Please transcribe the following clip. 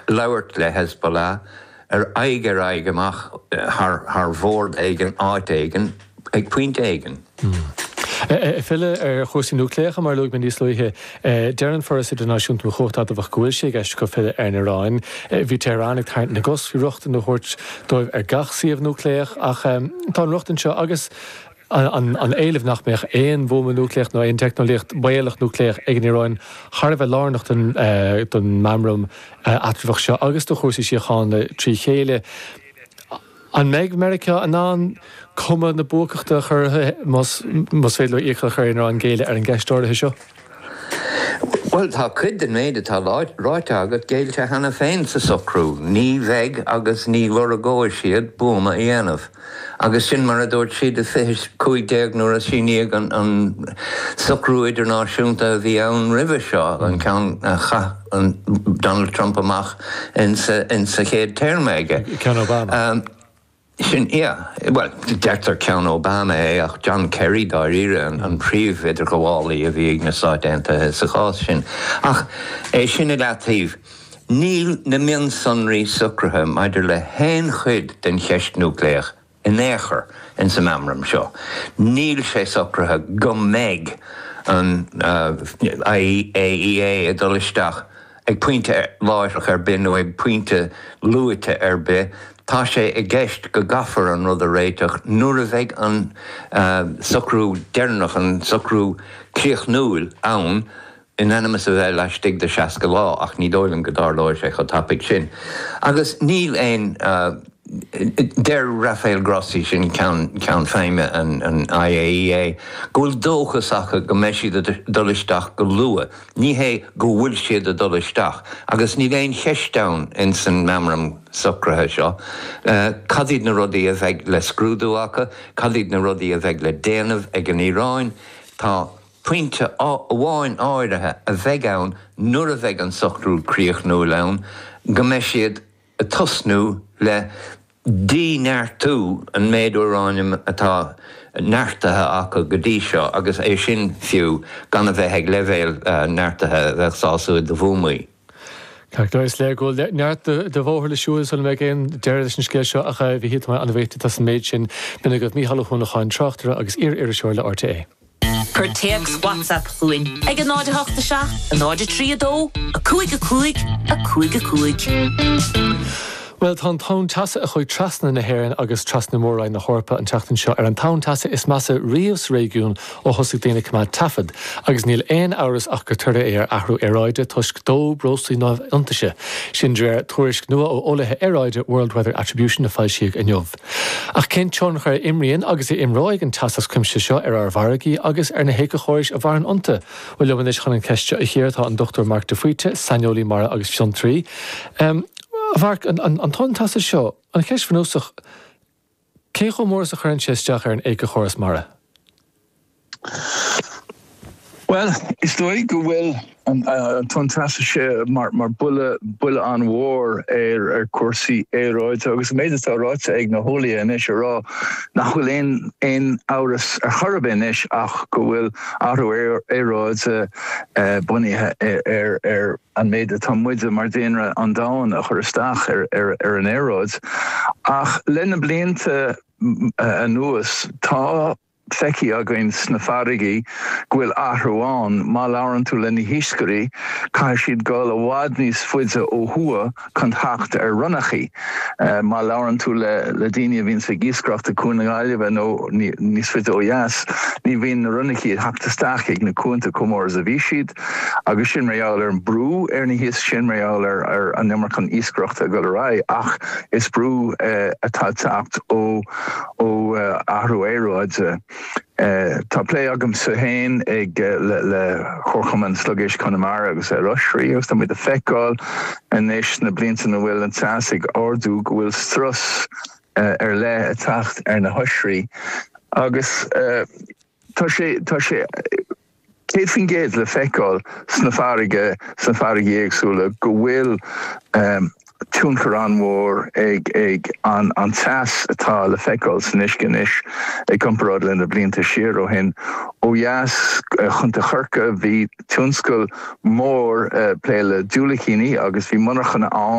labhairt le Hezbollah, ar aghaidh, ar aghaidh amach, thar bhord éigin, áit éigin, ag pointe éigin. Ag filleadh ar chúrsaí núicléacha, mar a luaigh mé níos luaithe, deir an Foras Idirnáisiúnta um Chumhacht Adamhach go bhfuil sé i gceist acu filleadh ar an Iaráin. Bhí Tehran ag tarraingt na gcos faoi rochtain a thabhairt dóibh ar gach suíomh núicléach ach tá an rochtain seo agus, an éilimh nach mbeadh aon bhuama núicléach nó aon teicneolaíocht bhaolach núicléach ag an Iaráin thar a bheith lárnach don mheamram eatramhach seo agus do chúrsaí síochána trí chéile. An mbeidh Meiriceá in ann cuma na buacachta a chur air más féidir leo iachall a chur ar an Iaráin géilleadh ar an gceist áirithe seo? Bhuel, tá cuid den mhéid atá ráite agat géillte cheana féin sa socrú, ní bheidh agus ní lorgóidh siad buama a dhéanamh, agus sin mar a dúirt siad i 2015 nuair a síníodh an socrú idirnáisiúnta a bhí ann roimhe seo, an ceann a chaith Donald Trump amach in sa chéad téarma aige. Ceann Obama. Sin é. Bhuel, deirtear ceann Obama é, ach John Kerry, dáiríre, an príomh-idirghabhálaí a bhí ag na Stáit Aontaithe sa chás sin. Ach é sin i leataoibh, níl na mionsonraí socraithe maidir le haon chuid den cheist núicléach in aon chor in san meamram seo. Níl sé socraithe go mbeidh an IAEA ag dul isteach. Ag pointe láithreach ar bith nó ag pointe luaite ar bith, tá sé i gceist go gcaithfear an rud a réiteach nuair a bheidh an socrú deireanach, an socrú críochnúil, ann, in ainm is a bheith laistigh de 60 lá, ach ní dóigh liom go dtarlóidh sé chomh tapaidh sin. Agus níl aon. Deir Rafael Grossi, sin ceann feidhme an IAEA, go bhfuil dóchas acu go mbeidh siad ag dul isteach go luath. Ní hé go bhfuil siad ag dul isteach, agus níl aon cheist ann ins an meamram socraithe seo, cad iad na rudaí a bheidh le scrúdú acu, cad iad na rudaí a bheidh le déanamh ag an Iaráin. Tá pointe amháin áirithe a bheidh ann nuair a bheidh an socrú críochnúil ann, go mbeidh siad, ag tosnú le dí-neartú an méid úráiniam atá neartaithe acu go dtí seo agus é sin fiú gan a bheith ag leibhéal neartaithe a bheadh sásúil do bhuamaí. Ceart go leor, is léir go bhfuil neart de bhóthar le siúl sula mbeidh aon deireadh leis an scéal seo ach a Mhichíl, táimid an-bhuíoch díot as an méid sin. B'in é agaibh Mícheál Ó hUanacháin, tráchtaire agus iar-iriseoir le RTÉ. Cuir téacs WhatsApp chugainn ag 08 7 03 2 5 5 5 5. Bhuel, tá an tonn teasa a chuaigh trasna na hÉireann agus trasna Mór-Roinn na hEorpa an tseachtain seo ar an tonn teasa is measa riamh sa réigiún ó thosaigh daoine ag coimeád taifead, agus níl aon amhras ach gur toradh é ar athrú aeráide toisc dó breoslaí neamh-in-athnuaite. Sin de réir tuairisc nua ó eolaithe aeráide World Weather Attribution a foilsíodh inniu. Ach cén tionchar a imríonn agus a imreoidh an teas as cuimse seo ar ár bhfarraigí agus ar na héiceachórais a mhaireann iontu? Bhuel, liom anois chun an cheist seo a chíoradh tá an Dr Marc de Faoite, saineolaí mara agus fiontraí. A Mharc, an tonn teasa seo, an cheist bhunúsach, cé chomh mór is a chuireann sé isteach ar an éiceachóras mara? Bhuel, is dóigh go bhfuil an Tonn Teasa seo mar bhuille an-mhór ar chúrsaí aeráide agus an méid atá ráite ag na heolaithe anois a rá nach bhfuil aon amhras ar chor ar bith anois ach go bhfuil athrú aeráide bunaithe ar an méid atá muide mar daonra an domhain ag cur isteach ar an aeráid. Ach le na blianta anuas, tá. feicthe againn sna farraigí go bhfuil athrú ann. Má labhrann tú le na hiascairí, caithfidh siad dul i bhfad níos faide ó thuaidh chun theacht ar ronnachaí. Má labhrann tú le daoine a bhíonns ag iascaireacht ag Cuan na Gaillimhe nó níos faide ó dheas, ní bhíonn na ronnachaí ag theacht isteach ag na cuanta chomh mór is a bhí siad agus sin mar gheall ar an brú ar na hiasc, sin mar gheall ar an iomarca iascaireachta ag dul ar aghaidh ach is brú atá ag teacht ó ó athrú aeráide. Tá plé agamsa féin le Comharchumann Sliogéisc Chonamara agus ar oisrí agus tá muid ag feiceáil anois sna blianta ina bhfuil an teas ag ardú go bhfuil strus ar leith ag teacht ar na hoisrí agus tá sé 100% le feiceáil sna farraige, sna farraigí éagsúla, go bhfuil tionchar an-mhór ag an teas atá le feiceáil san uisce anois i gcomparáid le na blianta siar ó shin. Ó dheas, i gContae Chorcaí, bhí tionscal mór ag plé le diúilicíní agus bhí monarchana ann.